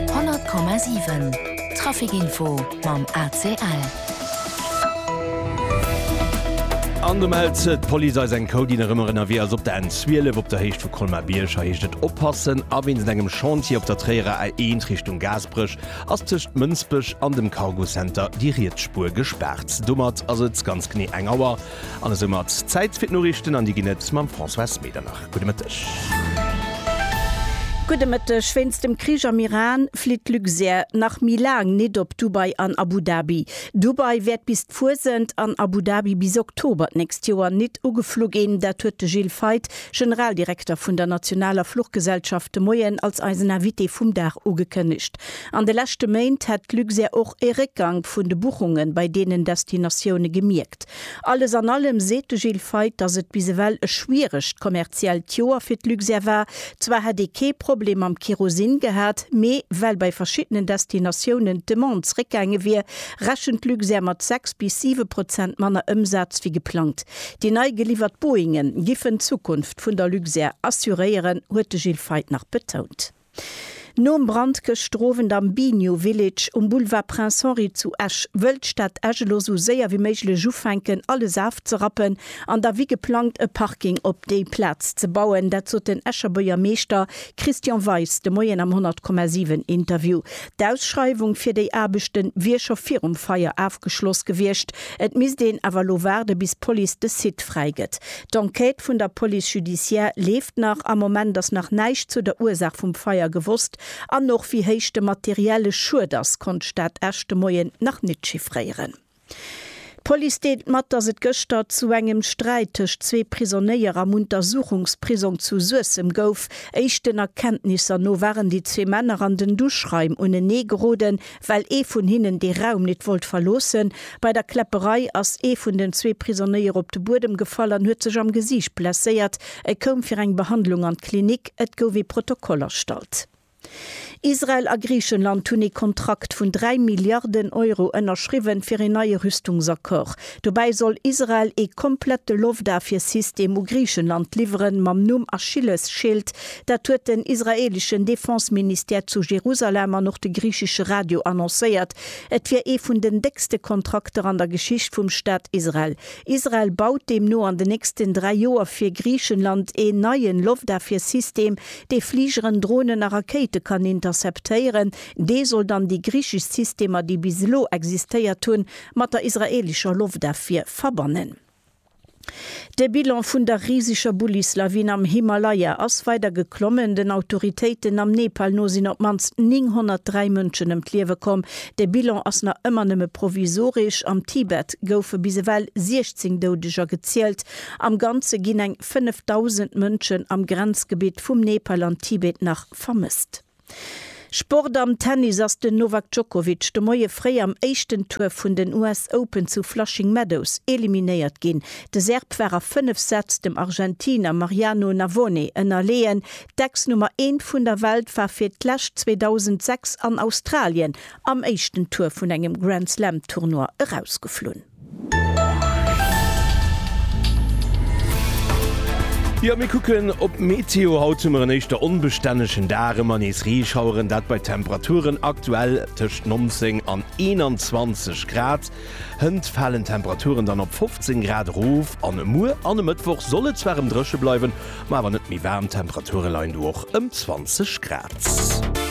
100,7 Trafic Info mam ACL. An do mellt d'Police eis eng Code, déi nach ëmmer ënnerwee ass. Op der N12 op der Héicht vu Colmar-Bierg. Hei heescht et oppassen a wéinst engem Chantier op der Tréierer A1 Richtung Gaasperech ass tëscht Mënsbech an dem Cargo Center déi riets Spuer gespaart. Domat ass et ganz genee eng Auer. An esou mat Zäit fir d'Noriichten an déi ginn et mam Françoise Medernach. Gudde Mëtteg. Gudde Mëtteg. Wéinst dem Krich am Iran flitt d'Luxair nach méi laang nit op Dubai an Abu Dhabi. Dubai wäert bis d'Fuesent an Abu Dhabi bis Oktober d'nächst Joer nit ugeflu ginn. Dat huet de Gilles Feith, Generaldirekter vun der nationaler Fluchgesellschaft de Moien als eisen Invité vum Dag ugekënnegt. An de leschte Méint hätt d'Luxair och e Réckgank vun de Buchunge bei deenen Destinatioune gemierkt. Alles an allem seet de Gilles Feith, datt et bis ewell e schwieregt kommerziellt Joer fir d'Luxair war. Zwar hätt ee kee Problem mam Kerosin gehat, mee well bei verschiddenen Destinatiounen d'Demande zeréckgaange wier, rechent d'Luxair mat 6 bis 7 Prozent manner Ëmsaz wéi geplangt. Déi nei geliwwert Boeinge giffen d'Zukunft vun der Luxair assuréieren, huet de Gilles Feith nach betount. Nom Brand gëschter Owend am Biniou Village um Boulevard Prince Henri zu Esch, wëll d'Stad Esch elo esou séier wéi méiglech ufänken alles afzerappen an da wéi geplangt e Parking op déi Plaz ze bauen. Dat sot den Escher Buergermeeschter Christian Weis de Moien am 100,7 Interview. D'Ausschreiwung fir déi Aarbechte wier scho virum Feier afgeschloss gewiescht, et misst een awer elo waarde bis d'Police de Site fräi gëtt. D'Enquête vun der Police judiciaire leeft nach. Am Moment ass nach näischt zu der Ursaach vum Feier gewosst an och wéi héich de materielle Schued ass, konnt d'Stad Esch de Moien nach nit chiffréieren. D'Police deelt mat, dass et gëschter zu engem Sträit tëscht zwee Prisonéier am Untersuchungsprisong zu Suessem gouf. Éischten Erkenntnisser no waren déi zwee Männer an den Duschraim unenee geroden. well ee vun hinnen dee Raum nit wollt verloossen. Bei der Kläpperei ass ee vun den zwee Prisonéier op de Buedem gefall an huet sech am Gesiicht blesséiert. E koum fir eng Behandlung an d'Klinik. Et gouf ee Protokoll erstallt. Israel a Griichenland hunn ee Kontrakt vun dräi Milliarden Euro ënnerschriwwen, fir een neie Rüstungsaccord Dobäi soll Israel ee komplette Loftafwiersystem u Griichenland liwweren, mam Numm Achillesschild. Dat huet den israeeleschen Defenseministère zu Jerusalem an och de griichesche Radio annoncéiert. Et wier ee vun den déckste Kontrakter an der Geschicht vum Staat Israel. Israel baut deemno an den nächsten dräi Joer fir Griichenland een neien Loftafwiersystem, dee Fligeren, Dronen a Rakéite kann interceptéieren. Dee soll dann déi griichesch Systemer, déi bis elo existéiert hunn, mat der israelischer Loftafwier verbannen. De Bilan vun der riseger Bullislawin am Himalaya ass weider geklommen. Den Autoritéiten am Nepal no sinn op d'mannst 903 Mënschen ëm d'Liewe komm. De Bilan ass nach ëmmer nëmme provisoresch. Am Tibet goufe bis ewell 16 Doudeger gezielt. Am Ganze ginn eng 5.000 Mënschen am Grenzgebitt vum Nepal an Tibet nach vermësst. Sport Am Tennis ass den Novak Djokovic de Moie fréi am éischten Tour vun den US Open zu Flushing Meadows eliminéiert ginn. De Serb war a 5 Sätz dem Argentiner Mariano Navone ënnerleeën. D'Ex-Nummer eent vun der Welt war fir d'lescht 2006 an Australien am éischten Tour vun engem Grand-Slam-Tournoi erausgeflunn. Jo, mir kucken op d'Meteo. Haut hu mer en éischter onbestännegen Dag, ëmmer nees Reeschaueren, dat bei Temperaturen aktuell tëscht 19 an 21 Grad. Hënt falen d'Temperaturen dann op 15 Grad erof an muer an e Mëttwoch soll et zwar erëm dréche bleiwen, ma awer net méi waarm, d'Temperature leien do och ëm 20 Grad.